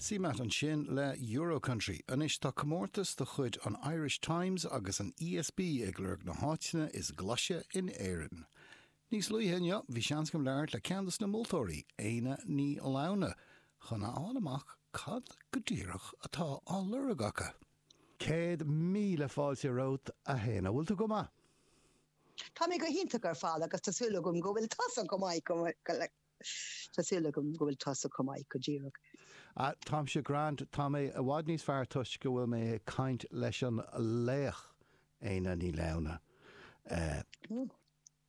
Sin Matt ansin le Euro-Country. Anois tá comórtas de chuid an Irish Times agus an ESB ag lorg na háiteanna is glaise in Éirinn. Níos luaithe inniu bhí seans agam labhairt le ceann dos na moltóirí, Éanna Ní Lamhna, chun a fháil amach cad go díreach atá á lorg acu. Céad míle fáilte romhat a Éanna. Bhfuil tú go maith? Tá mé go hiontach ar fad agus tá súil agam go bhfuil tusa chomh maith. Tá súil agam go bhfuil tusa chomh maith, go díreach. Ah, táimse grand, tá mé i bhfad níos fearr toisc go bhfuil mé ag caint leis an laoch, Éanna Ní Lamhna.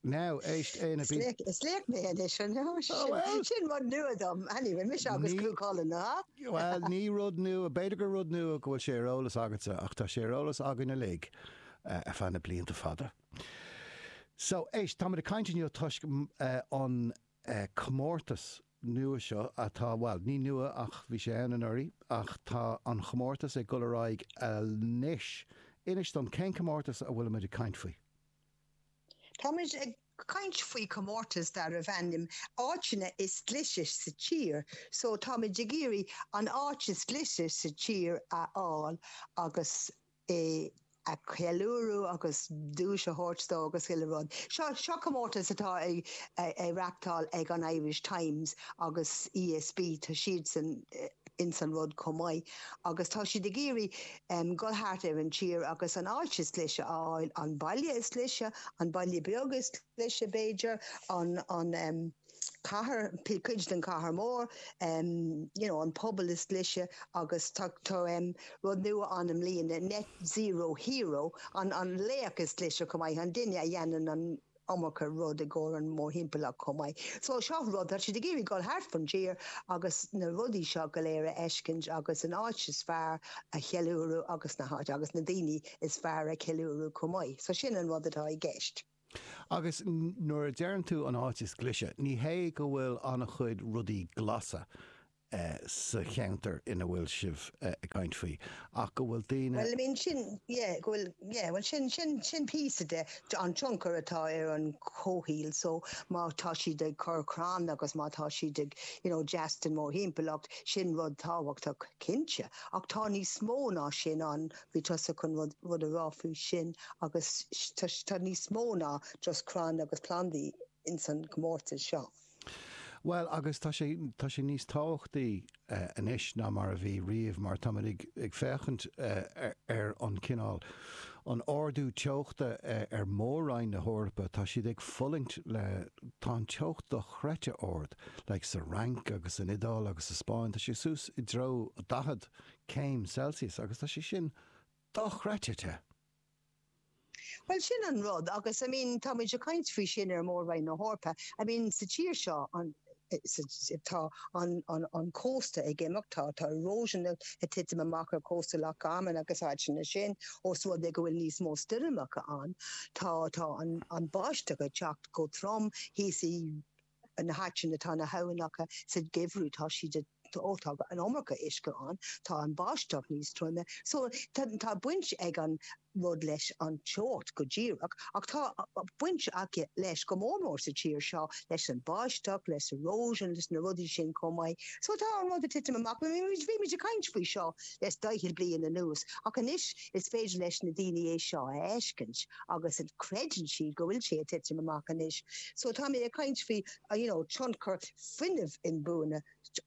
Now, éist, Éanna, táimid. Is laoch mé anois, an ea? Sin rud nua dom. Anyway, mise agus Cú Chulainn, a? Bhuel, ní rud nua, b'fhéidir gur rud nua go bhfuil sé ar eolas agatsa, ach tá sé ar eolas againn uilig ar feadh na blianta fada. So, éist, táimid ag caint inniu toisc an comórtas nua seo atá, bhuel, ní nua ach bhí sé ann anuraidh ach tá an comórtas ag dul ar aghaidh anois. Inis dom, cén comórtas a bhfuilimid ag caint faoi? Táimid ag caint faoi chomórtas darbh ainm Áiteanna is Glaise sa Tír. So, táimid ag iarraidh an áit is glaise sa tír a fháil agus. é a cheiliúradh agus duais a thabhairt dó agus chuile rud. Seo, seo comórtas atá á reáchtáil ag an Irish Times agus ESB, tá siadsan ins an rud chomh maith agus tá siad ag iarraidh dul thart ar an tír agus an áit is glaise a fháil, an baile is glaise, an baile beag is glaise b'fhéidir, an, an. cathair, cuid den chathair mór, you know an pobal is glaise agus tá tá um, rud nua an i mbliana, net zero hero, an an laoch is glaise chomh maith, an duine a dhéanann an iomarca rud i gcomhair an mórthimpeallacht chomh maith. So seo rud tá siad ag iarraidh dul thart fan tír agus na rudaí seo go léir a fheiscint agus an áit is fearr a cheiliúradh agus na háit agus na daoine is fearr a cheiliúradh chomh maith. So sin an rud atá i gceist. Agus nuair a deireann tú an áit is glaise, ní hé go bhfuil an-chuid rudaí glasa sa cheantar ina bhfuil sibh ag caint faoi, ach go bhfuil daoine. Bhuel, I mean, sin, yeah, go bhfuil, yeah, bhuel, sin, sin, sin píosa de, an tionchar atá ar an chomhshaol, so, má tá siad ag cur crann agus má tá siad ag, you know, deas den mórthimpeallacht, sin rud tábhachtach, cinnte, ach tá níos mó ná sin ann, Bhí tusa chun rud a rá faoi sin agus tá níos mó ná just crainn agus plandaí ins an gcomórtas seo. Bhuel agus tá sé, tá sé níos tábhachtaí anois ná mar a bhí riamh mar táimid ag féachaint ar an cineál, an ardú teochta ar Mhór-roinn na hEorpa, tá siad ag fulaingt le, tá an teocht dochreidte ard, like sa Fhrainc agus san Iodáil agus sa Spáinn, tá sé suas i dtreo 40 céim Celsius agus tá sé sin dochreidte te! Bhuel, sin an rud agus, I mean, tá muid ag caint faoi sin ar Mhór-Roinn na hEorpa. I mean, sa tír seo, an, tá an, an, an cósta ag imeacht, tá, tá erosion ag titim amach ar chósta Loch Garman agus áiteanna mar sin ós rud é go bhfuil níos mó stoirmeacha ann. Tá, tá an, an bháisteach ag teacht go trom thíos i. na háiteanna atá na habhainneacha sa geimhreadh tá siad ó tá an iomarca uisce ann tá an báisteach níos troime so tá tá baint ag an rud leis an teocht go díreach ach tá baint aige leis go mór mór sa tír seo leis an báisteach leis an erosion leis na rudaí sin chomh maith so tá an rud ag titim amach bhí muid ag caint faoi seo leis daichead bliain anuas ach anois Is féidir leis na daoine é seo a fheiscint agus creideann siad go bhfuil sé ag titim amach anois? So táimid ag caint faoi you know tionchar fuinneamh inbhuanaithe,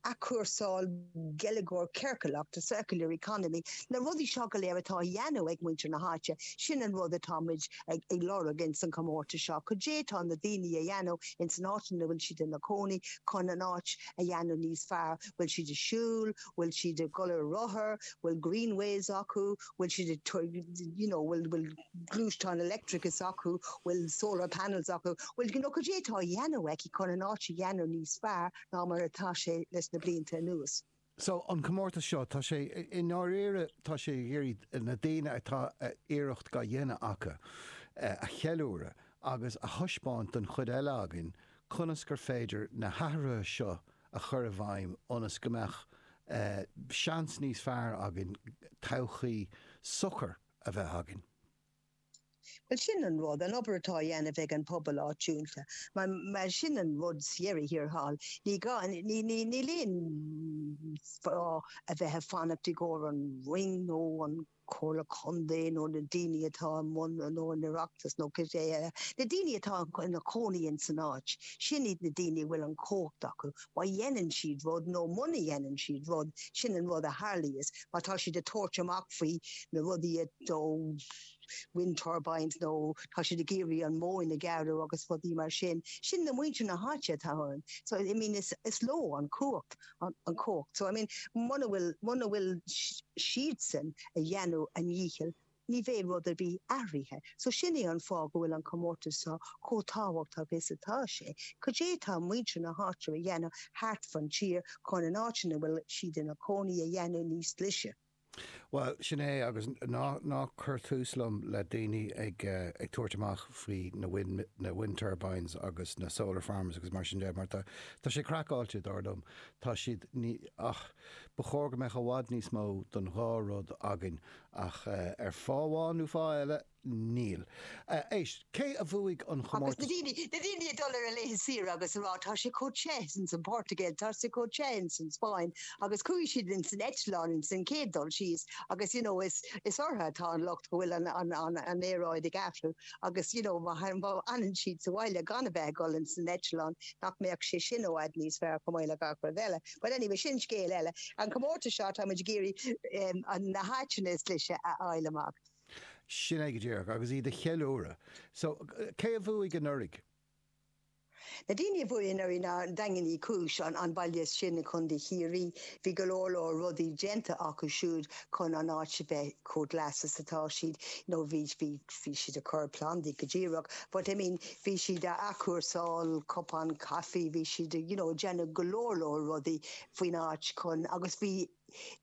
athchúrsáil, geilleagar ciorcalach, the circular economy, na rudaí seo go léir atá á dhéanamh ag muintir na háite, sin an rud atá muid ag ag lorg ins an chomórtas seo, cad é atá na daoine a dhéanamh ins an áit ina bhfuil siad ina gcónaí chun an áit a dhéanamh níos fearr, bhfuil siad ag siúl, bhfuil siad ag dul ar rothar, bhfuil greenways acu, bhfuil siad ag you know bhfuil bhfuil gluaisteáin electrics acu, bhfuil solar panels acu, bhfuil you know cad é atá á dhéanamh acu chun an áit a dhéanamh níos fearr ná mar atá sé leis na blianta anuas. So an comórtas seo, tá sé i ndáiríre tá sé ag iarraidh na daoine atá iarracht á dhéanamh acu a cheiliúradh agus a thaispeáint don chuid eile againn conas gur féidir na hathruithe seo a a chur i bhfeidhm ionas go mbeadh seans níos fearr againn todhchaí socair a bheith againn. Bhuel, sin an rud, an obair atá á dhéanamh ag an bpobal áitiúnta. Mar sin an rud sa dheireadh thiar thall, ní gá, níl aon fáth a bheith ag fanacht i gcomhair an Roinn nó an. Comhairle Contae nó na daoine atá i mbun nó an Oireachtas nó cibé ar bith, na daoine atá ina gcónaí in san áit, sin iad na daoine a bhfuil an chumhacht acu. Má dhéanann siad rud nó muna dhéanann siad rud, sin an rud a tharlaíos. Má tá siad ag tabhairt amach faoi na rudaí, nó wind turbines nó tá siad ag iarraidh an mhóin a ghearradh agus rudaí mar sin, sin na muintir na háite atá ann. So, I mean, is leo an chumhacht. an chumhacht so, I mean, muna bhfuil, muna bhfuil siadsan a dheanamh a ndícheall, ní bheidh rud ar bith athraithe. So sin é an fáth go bhfuil an comórtas so chomh tábhachtach is atá sé. Cad é tá muintir na háite a dheanamh thart fan tír chun an áit ina bhfuil siad ina cónaí a dheanamh níos glaise? Bhuel, sin é, agus ná cuir tús liom le daoine ag tabhairt amach faoi na wind turbines agus na solar farms agus mar sin de, mar tá sé craiceáilte, dar liom. Tá siad, ní, ach ba chóir go mbeadh i bhfad níos mó don dhá rud againn, ach ar fháth amháin nó fáth eile, Níl. Éist, cé a bhuaigh an comórtas? Agus na daoine ag dul ar a laethe saoire agus a rá tá sé chomh te ins an Phortaingéil, tá sé chomh te ins an Spáinn, agus chuaigh siad ins an eitleán ins an chéad dul síos agus you know is orthu atá an locht go bhfuil an aeráid ag athrú agus you know má fhanann siad sa bhaile gan a bheith ag dul ins an eitleán nach mbeadh sé sin i bhfad níos fearr chomh maith le gach rud eile. But anyway sin scéal eile. An comórtas seo tá muid ag iarraidh na háiteanna is glaise a fháil amach. Sin é go díreach, agus iad a cheiliúradh. So, cé a bhuaigh anuraidh? Na daoine a bhuaigh anuraidh ná Daingean Uí Chúis, an baile sin i gContae Chiarraí. Bhí go leor leor rudaí déanta acu siúd chun an áit a bheith chomh glas is atá siad. You know, bhí, bhí, bhí siad ag cur plandaí go díreach, but I mean, bhí siad a athchúrsáil cupáin caife, bhí siad a, you know, ag déanamh go leor leor rudaí faoin áit chun, agus bhí,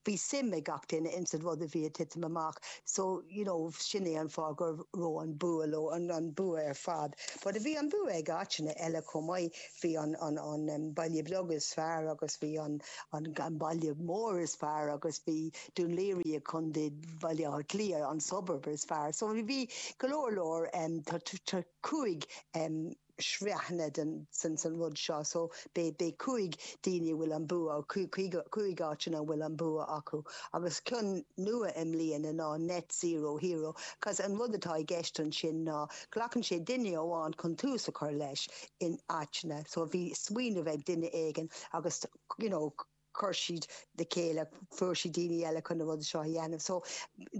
Bhí suim ag gach duine ins an rud a bhí a' titim amach so you know sin é an fáth gur raibh an bua leo, an bua ar fad. But bhí an bua ag áiteanna eile chomh maith, bhí an baile beag is fearr agus bhí an baile mór is fearr agus bhí Dún Laoghaire i Contae Bhaile Átha Cliath an suburb is fearr so bhí go leor leor cúig sraitheanna den rud seo so beidh cúig daoine a bhfuil an bua cúig áiteanna a bhfuil an bua acu agus ceann nua i mbliana ná Net Zero Hero cos an rud atá i gceist ansin ná glacann sé duine amháin chun tús a chur leis in áiteanna so bhí smaoineamh ag duine éigin agus you know chuir siad le chéile, fuair siad daoine eile chun na rudaí seo a dhéanamh. So,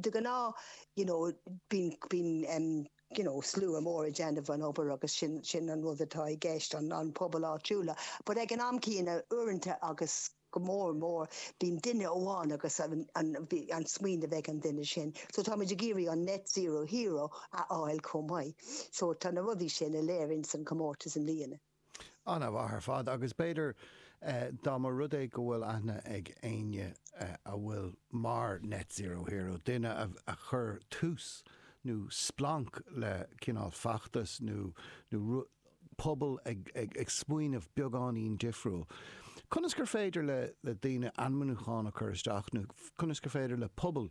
de ghnáth, you know, bíonn, bíonn em, you know, slua mór ag déanamh an obair agus sin, sin an rud atá i gceist, an, an pobal áitiúla. But ag an am céanna, uaireanta agus go mór mór, bíonn duine amháin agus an, an, bhí, an smaoineamh ag an duine sin. So táimid ag iarraidh an Net Zero Hero a fháil chomh maith. So tá na rudaí sin uilig san comórtas i mbliana. An-mhaith ar fad, agus b'fhéidir dá mba rud é go bhfuil aithne ag éinne a bhfuil mar Net Zero Hero, duine a chur tús nó splanc le cineál feachtas nó rud pobail, ag smaoineamh beagáinín difriúil, conas gur féidir le daoine ainmniúchán a chur isteach nó conas gur féidir le pobal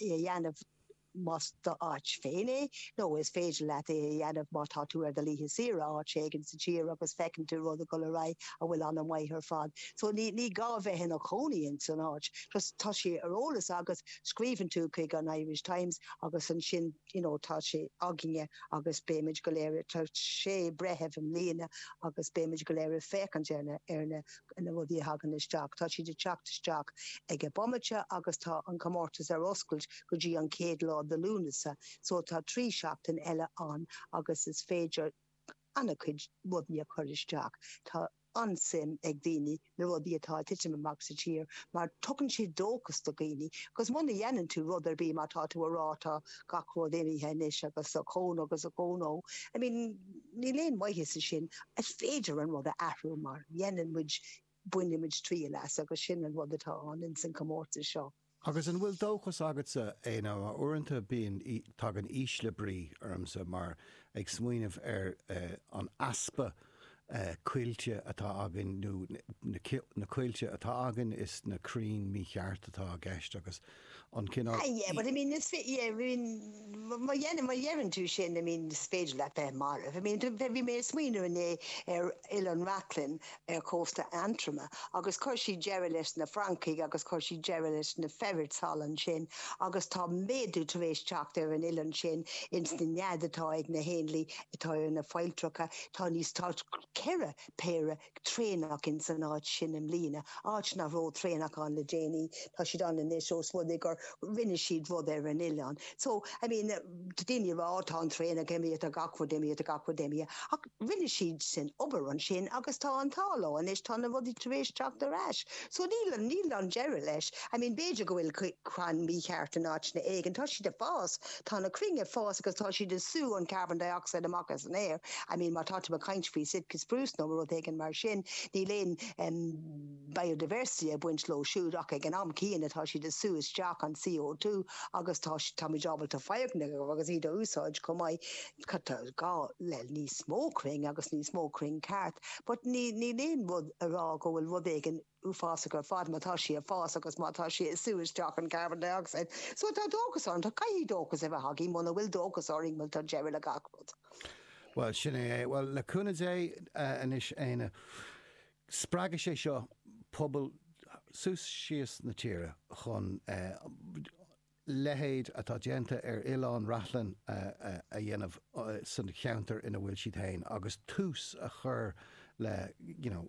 é a dhéanamh más d'áit féin é, nó is féidir leat é a dhéanamh má tá tú ar do laethe saoire áit éigin sa tír agus feiceann tú rud ag dul ar aghaidh a bhfuil an-mhaith ar fad. So ní gá bheith ina cónaí ins an áit, just tá sé ar eolas agat, scríobhann tú chuig an Irish Times agus ansin you know tá sé againne agus beimid go léir, tá sé breitheamh i mbliana agus beimid go léir ag féachaint ar na na rudaí a thagann isteach, tá siad ag teacht isteach ag an bomaite agus tá an comórtas ar oscailt go dtí an chéad lá de Lúnasa so tá trí sheachtain eile ann agus is féidir ana-chuid rudaí a chur isteach. Tá an-suim ag daoine na rudaí atá ag titim amach sa tír mar tugann siad dóchas do dhaoine agus muna dhéanann tú rud ar bith mar tá tú a rá tá gach rud imithe anois agus ochón agus ochón ó I mean Níl aon mhaitheas ansin. Is féidir an rud a athrú má dhéanann muid, bainfidh muid triail as agus sin an rud atá ann ins an comórtas seo. Agus an bhfuil dóchas agatsa Éanna uaireanta bíonn, tagann ísle brí ormsa mar ag smaoineamh ar an easpa coillte atá againn nó na coillte atá againn is na crainn mícheart atá i gceist agus an cineál. Ah yeah, but I mean is féidir, yeah, I mean, má dhein, má dheireann tú sin, I mean, is féidir leat bheith marbh. I mean, bhí, bhí mé ag smaoineamh inné ar Oileán Reachlainn ar chósta Aontroma agus chuir siad deireadh leis na francaigh agus chuir siad deireadh leis na ferrets all ansin agus tá méadú tar éis teacht ar an oileán sin ins na nead atá ag na héanlaith atá ar na failltreacha, tá níos, tá ceithre péire traonach ins an áit sin i mbliana, áit nach raibh traonach ann le déanaí, tá siad ann anois ós rud é gur rinne siad rud ar an oileán. So, I mean, tá daoine ag rá, oh, tá an traonach imithe, tá gach rud imithe, tá gach rud imithe, ach rinne siad sin obair ansin agus tá an t-ádh leo anois, tá na rudaí tar éis teacht ar ais. So, níl, níl an deireadh leis. I mean, b'fhéidir go bhfuil crann mícheart in áiteanna éigin, tá siad ag fás, Tá na crainn ag fás agus tá siad ag sú an carbon dioxide amach as an aer. I mean, má tá tú ag caint faoi Sitka spruce nó rud éigin mar sin, níl aon, em, biodiversity ag baint leo siúd ach ag an am céanna tá siad ag sú isteach an CO2 agus tá, táimid ábalta fáil crainn agus iad a úsáid chomh maith. But tá gá le níos mó crainn agus níos mó crainn ceart? But níl, níl aon rud a rá go bhfuil rud éigin. uafásach ar fad má tá sí ag fás agus má tá sí ag sú isteach an carbon dioxide so tá dóchas orainn, caithfidh dóchas a bheith againn muna bhfuil dóchas orainn bhuel tá deireadh le gach rud. Bhuel, sin é é. Bhuel, le cúnamh Dé, anois Éanna, spreagfaidh sé seo pobal suas síos na tíre chun leithéid atá déanta ar Oileán Reachlainn a dhéanamh sa cheantar ina bhfuil siad féin agus tús a chur le, you know,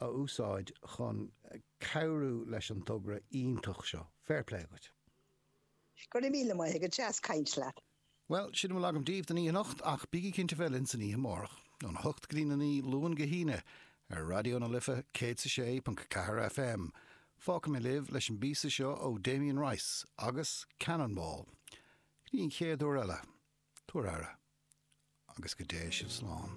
a úsáid chun cabhrú leis an togra iontach seo. Fair play dhuit. Go raibh míle maith agat, deas caint leat. Bhuel, sin a bhfuil agam daoibh don oíche anocht, ach bígí cinnte bheith linn san oíche amárach, óna hocht go dtí a naoi, Luan go hAoine, ar Raidió na Life 106.4 FM. Fágfaidh mé libh leis an bpíosa seo ó Damien Rice agus Cannonball. Go dtí an chéad uair eile, tabhair aire, agus go dté sibh slán.